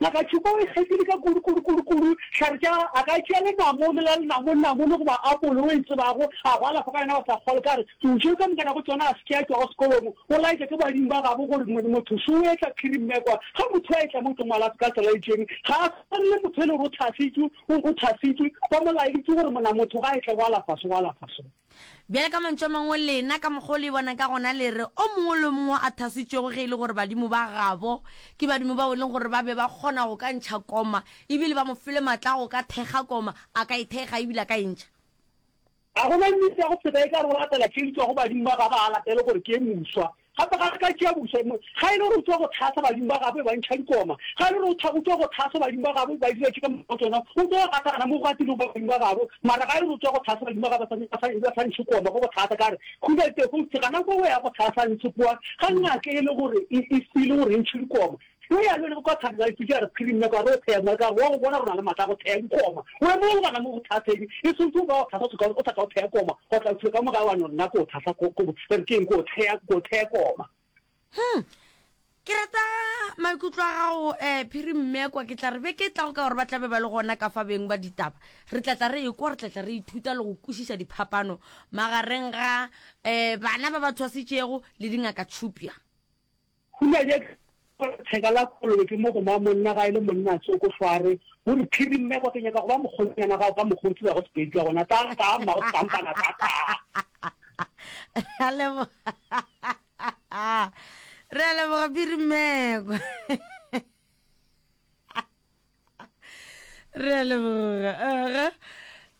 Ngaka Tšhupa o ikgethile ka kudu, kudu, kudu, kudu, hlare tša gagwe a ka tšea lenamone la lenamone, namone goba apole o e tsebago, a go alafa ka yona wa sa kgolwe. Ka re, Ntšeng ka moka nako tšona a se ke a tšwa go sekolong, o laetša ke badimo ba gabo gore mo, motho šo o etla phiri mme kwa. Ge motho a etla mo o tlo mo alafe ka tsela e itšeng. Ga a swane le motho e le gore o thasitšwe, o, o thasitšwe, ba mo laeditše gore mona motho ga a etla go alafa so, go alafa so. Bjale ka mantšu a mangwe, lena, ka mokgwa o le e bonang ka gona, le re, O mongwe le o mongwe o athasitšwego ge e le gore badimo ba gabo ke badimo bao e leng gore ba be ba kgona go ka ntšha koma, e bile ba mo file matla a go ka thekga koma, a ka e thekga e bile a ka e ntšha. Ga go na nnete ya go feta e ka re o latela tše di tšwago badimo ba gabo, a latele gore ke e moswa, Gape ga re ka tšea bofsa, ga e le gore o tšwa go tlhahla badimo ba gabo e ba ntšha dikoma, ga e le gore o tšwa go tlhahsa badimo ba gabo e ba dira tše ka moka go tsona, o tlo gatagana mo go gatilego ba badimo ba gabo, mara ga e le gore o tšwa go tlhahsa badimo ba gabo e ba sa ntšhe koma go go tlhahsa, ka re, Khuda Tefo, gana ko go ya go tlhahsa ntšhe kwa ga ngaka e le gore e file gore e ntšhe dikoma. Yo ya lwele kwa thari wa ipuša re phiri mme kwa re o theya mo ka wa go bona rona le matla go theya dikoma o emo go bana mo go thasedi e sontse o ba o thasa soka o sa ka o theya koma go tla uthile ka mo ga wa no nna ko thasa ko ko re keng ko theya ko theya koma Hmm ke rata maikutlo a gago eh phiri mme kwa ke tla re be ke tla go ka gore ba tlabe ba le gona ka fa beng ba ditaba re tla tla re e kwa re tla tla re ithuta le go kwešiša diphapano magareng ga eh bana ba ba tshwasitšego le dingaka tšhupja Hula je ka gore theka la kolobe ke mo go ma monna ga e le monna a tsoko hlware o re phiri mme kwa ke nyaka go ba mokgonyana gago ka mokgwa o tseba go sepedi ka gona tla ka mma go kampana ka ka Alebo Re a leboga phiri mme kwa Re a leboga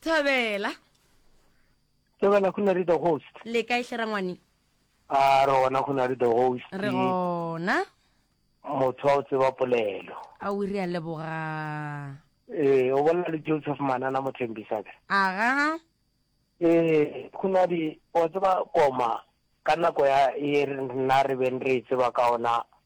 Thabela Ke wena Khunari the host. Le kae hle rangwane? A re gona Khunari the host. Re gona. Motho wa o tseba polelo. A o re a leboga. Ee, o bolela le Joseph Manana Mothembisa ke. Aga. Ee, Khunari o tseba koma ka nako ya e rena re beng re e tseba ka ona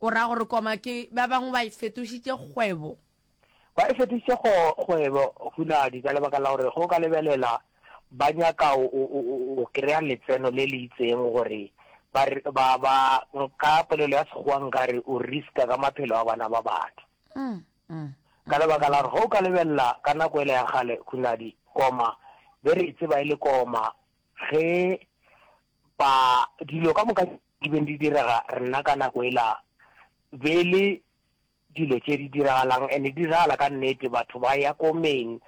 O ra gore koma ke ba bangwe ba e fetošitše kgwebo. Ba e fetošitše kgwebo, hunadi, ka lebaka la gore ge o ka lebelela ba nyaka go kry-a letseno le le itseng gore ba, ka polelo ya Sekgowa nka re o risk-a ka maphelo a bana ba batho. Ka lebaka la gore ge o ka lebelela ka nako ele ya kgale, hunadi, koma be re e tseba e le koma ge ba, dilo ka moka. Di beng di direga nna ka nako e la be e le dilo tše di diragalang and di diragala ka nnete batho ba ya ko meng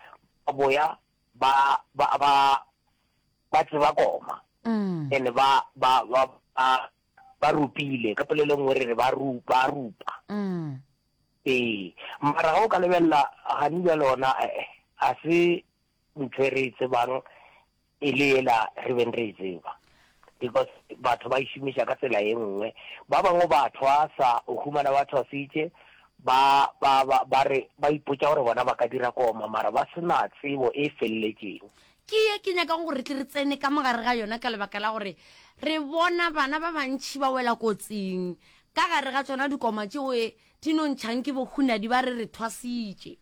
ba boya ba ba ba ba tseba koma and ba ba ba ba ba rupile ka polelo nngwe re re ba rupa rupa ee mara ga o ka lebelela gani bjale ona a se ntho e re e tsebang e le yela re beng re e tseba because batho ba išomiša e ka tsela ye nngwe ba bangwe ba thwasa o humana ba thwasitše ba ba ba ba re ba ipotsa gore bona ba ka dira koma mara ba sena tsebo e feleletšeng ke ye ke nyaka gore tle re tsene ka mogare ga yona ka lebaka la gore re bona bana ba bantšhi ba wela kotsing ka gare ga tsona dikoma tšeo e di nontšhang ke bohunadi ba re re thwasitše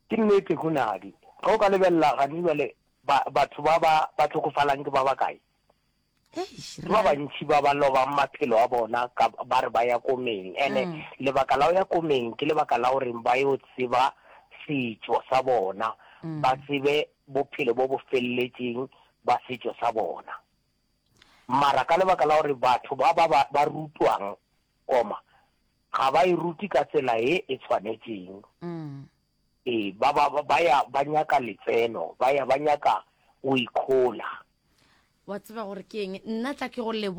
Ke nnete, hunadi. Ge o ka lebelela gane bjale, ba, batho ba ba, ba hlokofalang ke ba bakae? Eish, Ke ba ra. bantši ba ba lobang maphelo a bona ka, ba re ba ya ko meng. Ene Mm. lebaka la go ya ko meng ke lebaka la gore ba yo tseba setšo sa bona, ba Mm. tsebe bophelo bo bo felletšeng ba setšo sa bona. Mara ka lebaka la gore batho ba ba ba ba rutwang koma ga ba e rute ka tsela e e tshwanetseng, e ba ba ba ya ba nyaka letseno, ba ya ba nyaka go ikhola. Wa tseba gore ke eng? Nna tla ke go leboge.